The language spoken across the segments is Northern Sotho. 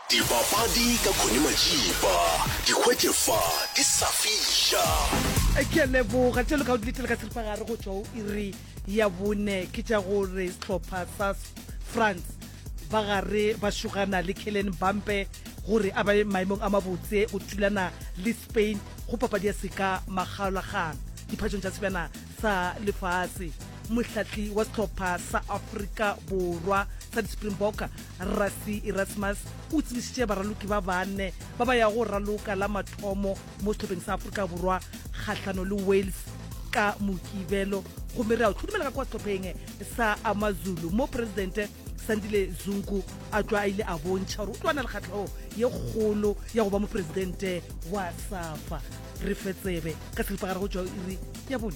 Dibapadi ka Connie Majiba, di hwetše fa di sa fiša. ke a leboga tšelo ka o diletele ka seripagare go tšwa o iri ya bone ke tša gore sehlopha sa S- france ba gare ba šogana le kellen bampe gore a bae maemong a mabotse go thulana le spain go papadi ya seka makgaolakgang diphatšong tša sebjana sa lefase mohlahli wa sehlopha sa afrika borwa sa di-springbok Rassi Erasmus o tsebišitše baraloki ba bane ba ba yago raloka la mathomo mo sehlopheng sa Afrika Borwa kgahlano le Wales ka Mokibelo gomme re a o tlhodumela ka kwa sehlopheng sa AmaZulu mo Presidente Sandile Zungu a tšwa a ile a bontšha gore o tloana le kgatlhego ye kgolo ya go ba mopresidente wa SAFA. Re fe tsebe ka selipa gare go tšwa iri ya bone.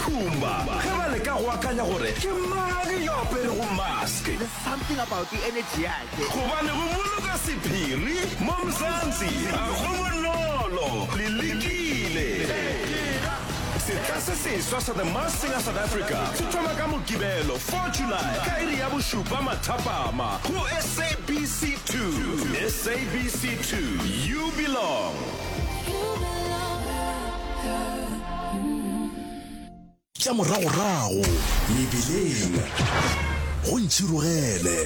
Pumba ge ba leka go akanya gore ke mang yo aperego mask. There's something about the energy yakhe. Gobane go boloka sephiri mo Mzansi ga go bonolo. Le lekile? Setla se seswa sa The Masked Singer South Africa se thoma ka Mokibelo 4 July ka iri ya bošupa mathapama go SABC 2. SABC 2, you belong. tša moragorago mebeleng go ntšhirogele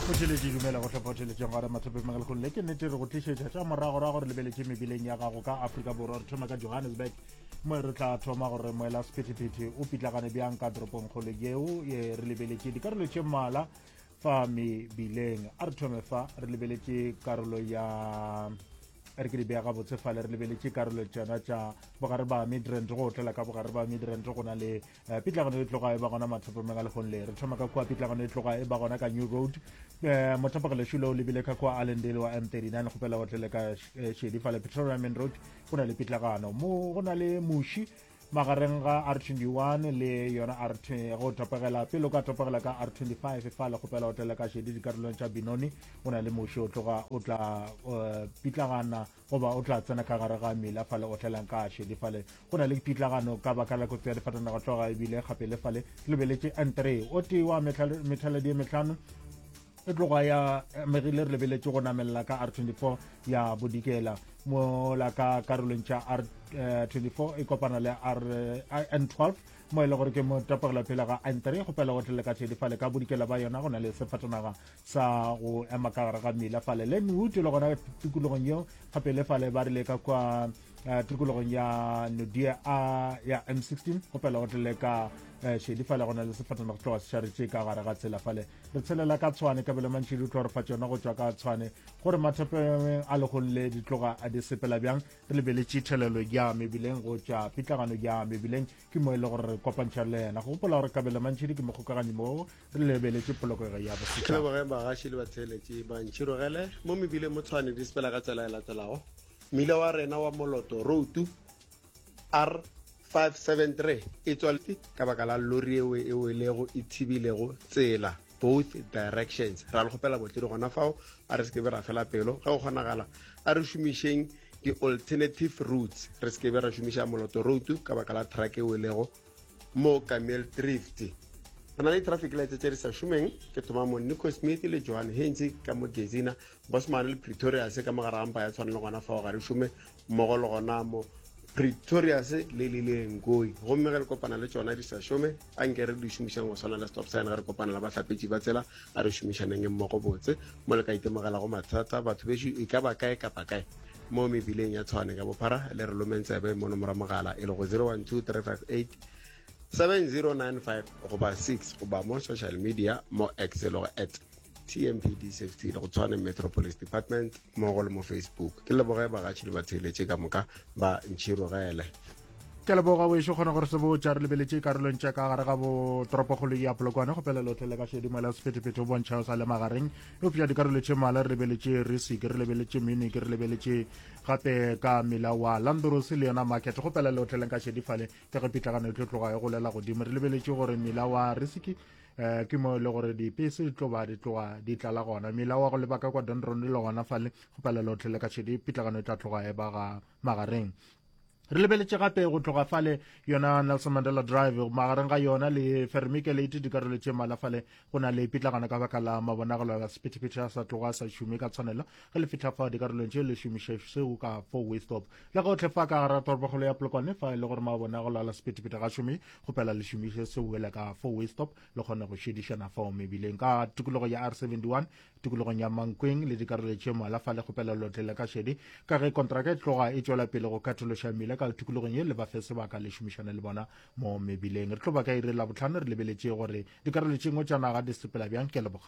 kgotheletše dumela go hlopha theletšeng gore mathopemegele go le ke nnete re go tlišetša tša moragorago gore lebeletše mebeleng ya gago ka afrika borwa re thoma ka johannesburg mo re tla thoma gore moela sephethephethe o pitlagane bjang ka toropong kgolo yeo e re lebeletše dikarolo tše mmala fa mebileng a re thome fa re lebeletše karolo ya re ke di bea gabotse fale re lebeletše karolo tsena tša bogare ba midrand go otlela ka bogare ba midrand go na le eh, pitlagano e tloga e ba gona mathopomeng a legong le re thoma ka kua pitlagano e tloga e ba gona ka new road eh, mothapagelešu le o lebile ka kua allendale wa m 39 gopela otlele ka eh, šedi fale petroleum main road go na le pitlagano mo go na le muši magareng ga r21 le yona r go topegela pele o ka topegela ka r25 fa le kgopela o tlela ka šedi dikarolong tša binoni o na le moši o tloga o tla eh, pitlagana goba o tla tsena ka gare ga mela fale o tlelang ka šedi fale go na le pitlagano ka baka la kotsi ya difatanaga tloga ebile gape le fale lebeletše n3 o tee wa methaledi e metlhano e tloga ya megile re lebeletše go namelela ka r24 ya bodikela mola ka karolong tša r24 eh, e kopana le rn12 eh, mo e le gore ke motapogelo pele ga n3 go pela gotlele ka tšhedi fale ka bodikela ba yona go na le sefatanaga sa go ema ka gare ga mmila fale le nwood le gona tikologong yeo gape le fale ba rile ka kwa eh, tikologong ya nodia a ya m16 go pela gotlele ka šedi fale go na le sefatanaga tloga se šaretše ka gare ga tsela fale re tshelela ka tshwane kabelo mantši di utlwa re fa tsona go tšwa ka tshwane gore mathapeng a legong le di tloga a di sepela bjang re lebeletše thelelo ya mebileng go tšwa pitlagano ya mebileng ke mo e le gore re kopantšha le yena go gopola gore kabelo mantšhidi ke mokgokaganyi moo re lebeletše polokego ya bosetšhaba bagaši le batheeletše bantšhi rogele mo mebileng mo tshwane di sepela ka tsela e latelago mmila wa rena wa moloto routu R573 e tswaletšwe ka baka la lori yeo e welego e thibilego tsela both directions. Ra le kgopela botledi gona fao a re se ke be ra fela pelo. Ge go kgonagala, a re šomišeng di-alternative routes re se ke be ra šomiša moloto road ka baka la truck e welego mo Camille Drift. Re na le di-traffic lights tše di sa šomeng, ke thoma mo Nico Smith le Johan Heinze ka mo Gezina, Bosman le Pretorius ka mo gare ga mpa ya tshwana le gona fao ga re šome, mmogo le gona mo Pretorius le lile Ngoi gomme ge le kopana le tšona di sa šome a nke re di šomišang go swana le stop sign ge re kopana le bahlapetši ba tsela a re šomišaneng e mmogo botse mo le ka itemogela go mathata batho bešo e ka ba kae kapa kae mo mebileng ya tshwane ka bophara le re lomeng tsebe mo nomora mogala e le go 012358 7095 goba 6 goba mo social media mo x e lego at tmpd safety le go tshwane metro police department mmogo le mo facebook ke leboge bagatšhi le batheeletše ka moka ba ntšhirogele ke leboga wešo kgona gore se botša re lebeletše karolong tša ka gare ga bo toropokgolo ya polokwane go pele lotlhe le ka šedimo la sephethephethe o bontšha o sa le magareng eupša dikarolo tše mala re lebeletše risi ke re lebeletše mini ke re lebeletše gape ka mela wa landros le yona market go pele lotlhe le ka šedifale ke ge pitlagano e tlo tloga e golela godimo re lebeletše gore mela wa risiki um ke mo e le gore dipese di tloba di tloga di tlala gona mela wa go lebaka kwa donron le gona fale go palelo tlhele ka tšhedi pitlagano e tla tloga e ba ga magareng re lebeletše gape go tloga fale yona nelson mandela drive magareng ga yona le fermike late dikarolo tše mala fale go na le pitlagana ka baka la mabonagelo a sephethephethe a sa tloga a sa šume ka tshwanelo ge le fitlha fa dikarolong tše le šomiše seo ka fo westop le gotlhe fa ka gara toropogolo ya polokwane fa e le gore mabone a go lala sepetepete ga šome gopela le šomiše seo wele ka fo westop le kgone go šedišana fao mebileng ka tikologo ya r71 tikologong ya mankweng le dikarolo tše mola fa le gopela lotlele ka šedi ka ge kontraka e tloga e tšwela pele go khathološa mmila ka tikologong ye le ba fe sebaka le šomišane le bona mo mebileng re tlo ba ka ire la botlhano re lebeletše gore dikarolo tše ngwe tša naga di sepela bjang ke leboga